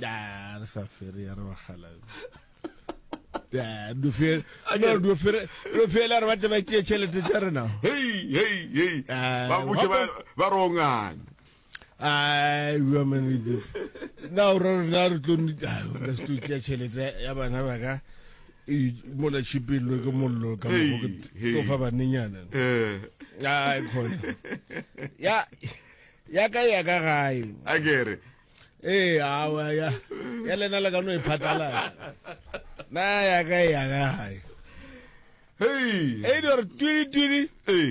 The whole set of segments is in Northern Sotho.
ya re sa fere ya re bagala do feel no do feel do feel re batle ba tšee tšhelete tša rena hey hey hey ah, ba butše ba ba rongane ai wa mane ke na o re na re tlo nita ah, ka se tlo tšea tšhelete ya bana ba ka e mola chipillo ke mollo ka mo go tlo fa banenyana eh ai khona ya ya ka ya ka gae a kere ee awa ya ya lena le ka no e phatala na ya ka e ya ka gae hey e di re twiri twiri hey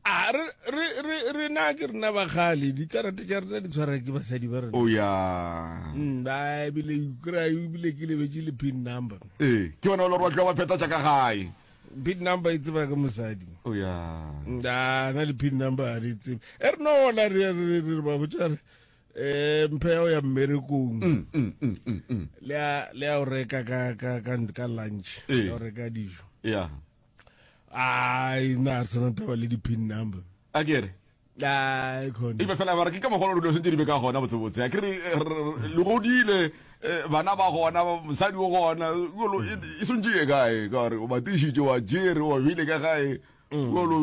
a re re re re na ke rena ba gale di karate ja rena di tshwara ke basadi ba rena o ya mm ba bile kra bile ke lebetse le pin number eh ke bona lo rwa tla ba pheta tsa ka gae pin number e tseba ke mosadi oh, na na le pin number a re tsebe e re nola re re re ba botsa re eh mphe ya o ya mmerekong mm, mm, mm, le a le a o reka ka ka ka ka lunch eh. ya o reka dijo ya ai na re sona taba le di pin number a kere ebe fela ba re ke ka mogolo dilo sentse di be ka gona botsebotse a kere le godile bana ba gona mosadi o gona olo e swantse ye kae ka gore o batišitše wa jere wa bile ka gae olo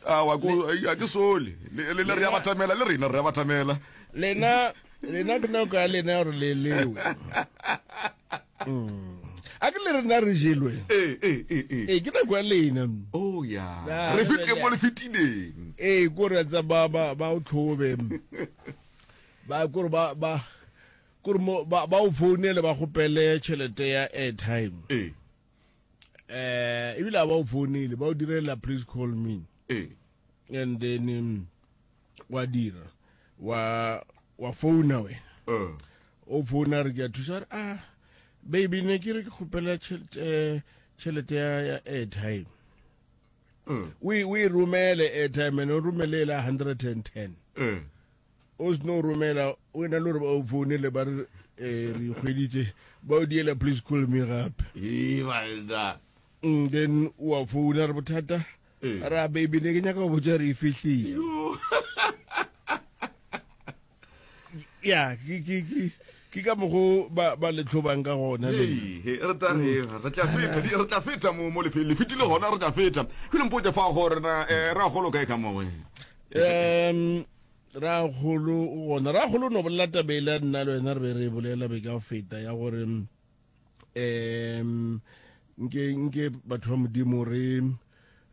a ke sole le re ya batamela le rena re ya batamela lena lena ke nako ya lena gore le lewe a ke le rena re jelwe ee ee ee ee ee ke nako ya lena mm. oh ya Ya, re re fetile bjale. mo le fetileng ee kore tsa ba ba ba o tlhobe mm. ba kore ba ba kore mo ba ba o founele ba gopele tšhelete ya airtime ee eh ebile a ba o founele ba o direla please call me ee and then um, wa dira wa wa founa wena eh. o founa re ke a thusa re a ah, baby ne ke re ke kgopela tšhelete eh, ya airtime mm. o e romele airtime ene o romele ela hundred and ten mm. o seno romela o ena le gore ba o founele ba re eh, re kgweditse ba o diela please call me gape then wa founa re bothata ra baby ne ke nyaka go botsa re e fihlile ya ke ke ke ke ka mogo ba ba le tlhobang ka gona le Hey, hey, re tla re re tla feta di- re tla feta mo mo lefe le fitile gona re tla feta ke le mpotse fa go rena eh, ra golo kae ka mowe um ra golo o gona ra golo no bolela tabela nna le wena re be re e bolela be ka feta ya gore mm, um nke nke batho ba modimo re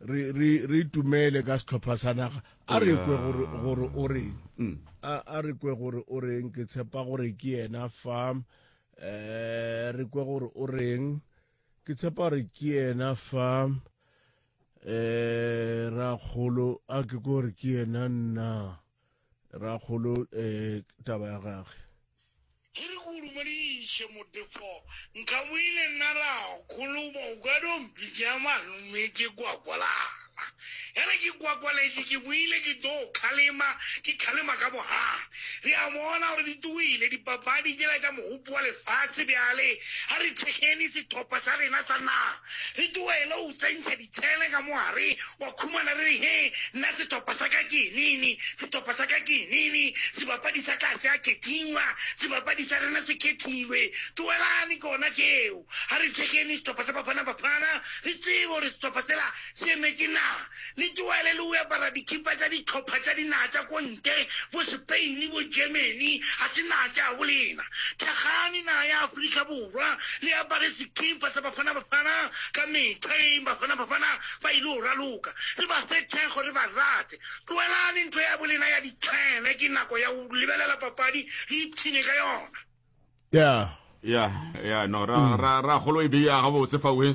re re re itumele ka setlhopha sa naga a re kwe gore gore o reng mm. a re kwe gore o reng ke tshepa gore ke yena fa um re kwe gore o reng ke tshepa gore ke yena fa um ra kgolo a ke kore ke yena nna Rakgolo um taba ya gage. Ke re ke o dumediše Modifo. Nkabile nna Rakgolo ba o ka dompi tša malome ke kwakwalana. Ya re ke kwakwaletše ke boile ke tlo o kgalema ke kgalema ka bogale. Re a bona gore di tugile dipapadi tšela tša mogopo wa lefase bjale a re thekgeni sethopha sa rena sa naga re tlogelou tsentšha Tsene ka mo gare, wa khumana re re, He, nna setopa sa ka ke enene, setopa sa ka ke enene, sebapadi sa ka ga se a khethiwa, sebapadi sa rena se khethilwe. Tlogelane kona tšeo. Ga re thekgene setopa sa Bafana Bafana, re tsebe gore setopa sela se emetše naga. Le tlogele le go apara dikhipa tša dihlopha tša dinaga tša ko ntle, bo Spain, bo Germany, ga se naga tša gabo lena. Thakgane naga ya Afrika Borwa. Borwa le apare sekipa sa Bafana Bafana ka mehla eng Bafana Bafana ba il'o raloka re ba fe thekgo re ba rate tloelani ntho ya bo lena ya ditshene ke nako ya ho lebelela papadi re ipshine ka yona. Yeah. Yeah, yeah, no, ra, mm. ra, ra golo e beya gabotse fawe.